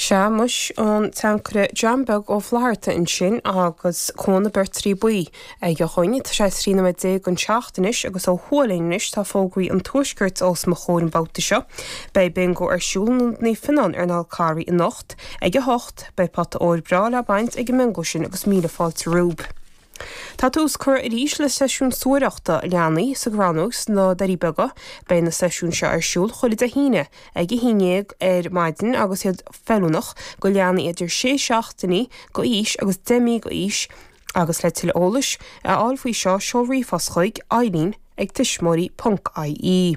Sea muis an tAncaire John Beag Ó Flatharta ansin agus Cuan na Beirtrí Buí aige dhúinn. Tá sé trí nóiméad déag don seacht anois agus ó thuaidh linn anois tá fógraí an tuaiscirt os mo chomhair an babhta seo. Beidh bingo ar siúl in Ionad Naomh Fionáin ar an Fhál Carrach anocht ag a hocht. Beidh pota óir breá le baint ag an mbingo sin agus míle fáilte romhaibh. Tá tús curtha arís le seisiún suathaireachta leanaí sa gCrannóg sna Doirí Beaga. Beidh na seisiúin seo ar siúl chuile Dé hAoine ag a haon dhéag ar maidin agus iad feiliúnach go leanaí idir sé seachtainí go aois agus deich mí go aois agus le tuilleadh eolais a fháil faoi seo seol ríomhphost chuig, Eileen ag tuismitheoirí.ie.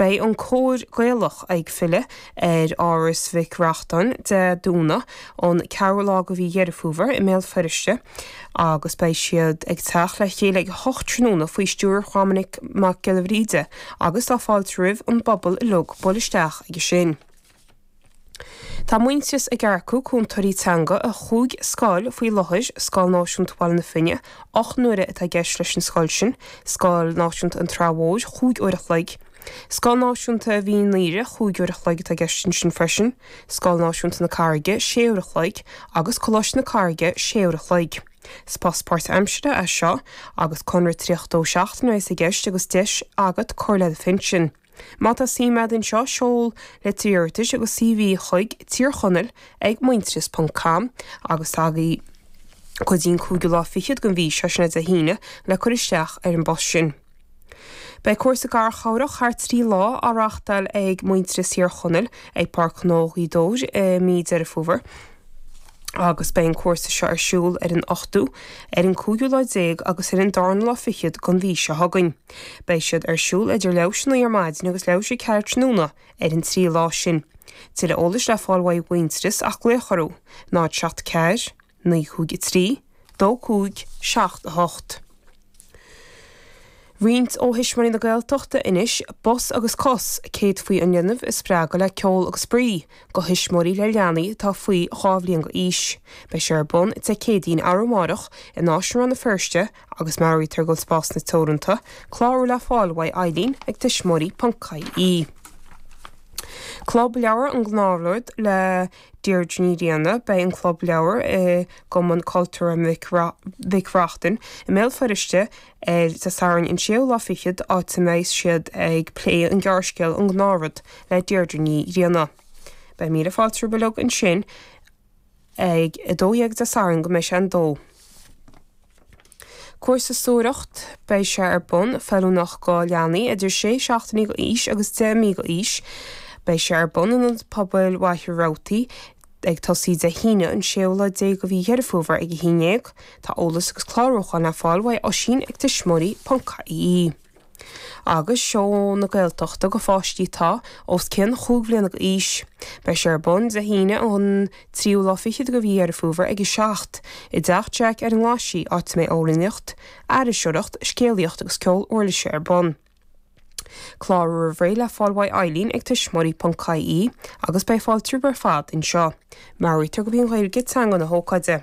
Beidh an cór Gaelach ag filleadh ar Áras Mhic Reachtain Dé Domhnaigh an ceathrú lá de mhí Dheireadh Fómhair i mBéal Feirste agus beidh siad ag teacht le chéile ag a hocht tráthnóna faoi stiúir Dhoiminic Mac Giolla Bhríde agus tá fáilte roimh an bpobal uilig bualadh isteach aige sin. Tá Muintearas ag earcú cúntóirí teanga do chúig scoil faoi láthair, Scoil Náisiúnta Bhaile na Finne, ocht n-uaire atá i gceist leis an scoil sin, Scoil Náisiúnta an tSratha Mhóir, cúig uair a chloig, Scoil Náisiúnta Mhín an Aoire, cúig uair a chloig atá i gceist ansin freisin, Scoil Náisiúnta na Carraige, sé uair a chloig, agus Coláiste na Carraige, sé uair a chloig. Is post páirtaimseartha é seo agus conradh 32 seachtaine a bheas i gceist agus deis agat cur le do phinsean. Má tá suim agat ann seo, seol litir iarratais agus CV chuig, Tír Chonaill ag Muintearas ponc com, agus tá agaibh go dtí an cúigiú lá fichead den mhí seo, sin é Dé hAoine, le cur isteach ar an bpost sin. Beidh cúrsa garchabhrach thar trí lá á reáchtáil ag Muintearas Thír Chonaill ag Páirc Ghnó Ghaoth Dobhair i mí Deireadh Fómhair agus beidh an cúrsa seo ar siúl ar an ochtú, ar an cúigiú lá déag agus ar an darna lá fichead den mhí seo chugainn. Beidh siad ar siúl idir leathuair tar éis a naoi ar maidin agus leathuair tar éis a ceathair tráthnóna ar an trí lá sin. Tuilleadh eolais le fáil uaidh Mhuintearas ach glaoch orthu, 074 953 2578. Roinnt ó Thuismitheoirí na Gaeltachta anois, Bos agus cos, céadfaí an linbh a spreagadh le ceol agus spraoi, go thuismitheoirí le leanaí atá faoi dhá bhliain d'aois. Beidh sé ar bun Dé Céadaoin, arú amárach, in Áislann Rann na Feirste, agus meabhraítear go bhfuil spásanna teoranta clárú le fáil uaidh Eileen ag tuismitheoirí.ie. Club Leabhar An Gnáthrud le Deirdre Ní Riain Beidh an Club Leabhar i gCumann Cultúrtha Mhic Reachtain i mBéal Feirste ar Dé Sathairn an séú lá fichead, áit a mbeidh siad ag plé an ghearrscéal 'An Gnáthrud' le Deirdre Ní Riain. Beidh míle fáilte romhaibh uilig ansin. ag 12 Dé Sathairn go mbeidh sé an dó. Cúrsa suathaireacht Beidh sé ar bun feiliúnach do leanaí idir sé seachtainí d'aois agus deich mí d'aois. Beidh sé ar bun in Ionad Pobail Mhachaire Rabhartaigh ag tosaí Dé hAoine an séú lá déag de mhí Dheireadh Fómhair ag 11. Tá eolas agus clárúchán le fáil uaidh Oisín ag tuismitheoirí.ie. agus Seó na Gaeltachta do pháistí atá os cionn chúig bhliana d'aois. Beidh sé ar bun Dé hAoine an 3ú lá fichead de mhí Dheireadh Fómhair ag 7:00 i dTeach Jack ar an nGlaisigh, áit a mbeidh amhránaíocht, aithriseoireacht, scéalaíocht agus ceol uirlise ar bun. Clárú roimh ré le fáil uaidh Eileen ag tuismitheoirí.ie agus beidh fáilte romhaibh ar fad anseo. Meabhraítear gurb í an Ghaeilge teanga na hócáide.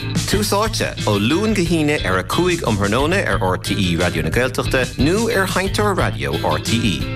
Tús Áite, ó Luan go hAoine ar a 5 um thráthnóna ar RTÉ Raidió na Gaeltachta nó ar sheinnteoir raidió RTÉ.